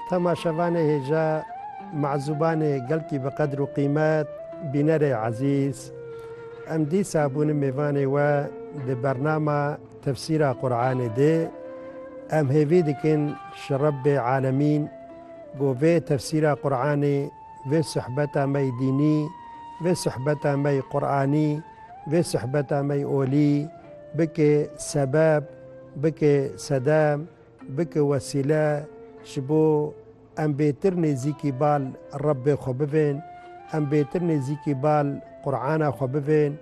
Temaşevanê hêja, mezûbanê gelkî bi qedr û qîmet, bînerê ezîz, em dîsa bûn mêvanê we di bernama Tefsîra Quranê de. Em hêvî dikin ji Rebbê Alemîn ku vê Tefsîra Quranê, vê suhbeta me yê dînî, vê suhbeta me yê Quranî, Vê sihbeta me yê olî bike sebeb, bike sedem, bike wesîle ji bo em bêtir nêzîkî bal Rebbê xwe bibên, em bêtir nêzîkî bal Qur'ana xwe bibên,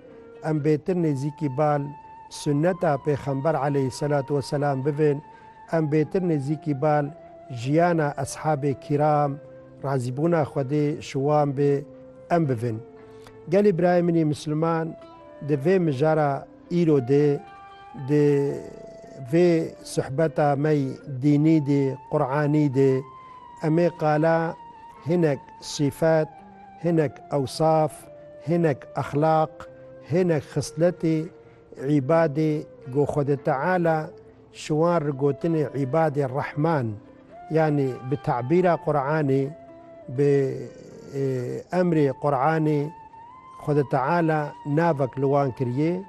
em bêtir nêzîkî bal Sunneta Pêxember aleyhîsselatu weselam bibên, em bêtir nêzîkî bal jiyana Eshabê Kîram, razîbûna Xwedê ji wan be, Em bivin. Gelê birayê min ê Misliman di vê mijara îro de di vê suhbeta me y dînî de, Quranî de em ê qala hinek sîfet, hinek ewsaf, hinek exlaq, hinek xisletê, Îbadê ku Xwedê Teala ji wan re gotinê Îbadê Rehman yanî bi tebîra Quranê, bi emrê Quranê Xwedê Teala navek li wan kiriye,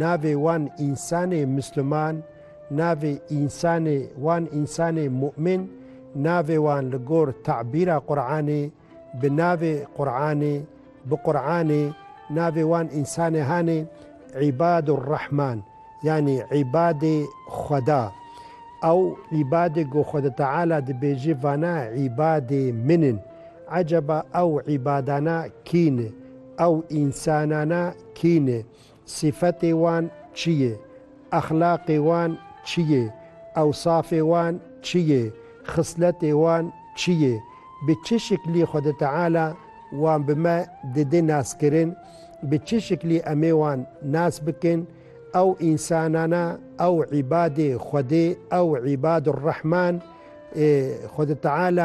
navê wan însanê Misliman, navê însanê wan însanê Mu'min, navê wan li gor tebîra Quranê, Bi navê Quranê, bi Quranê, navê wan însanê hanê, Îbadûr Rehman, yanî Îbadê Xweda. Ew Îbadê ku Xweda Teala dibêjî vana Îbadê min in. Eceba ew Îbadana kî ne? Ew însanana kî ne? Sîfetê wan çi yê? Exlaqê wan çi yê? Ewsafê wan çi yê? Xisletê wan çi yê? Bi çi şiklî Xwedê Teala wan bi me dide naskirin? Bi çi şiklî emê wan nas bikin? Ew însanana, ew îbadê Xwedê, ew îbadurrehman ê Xwedê Teala,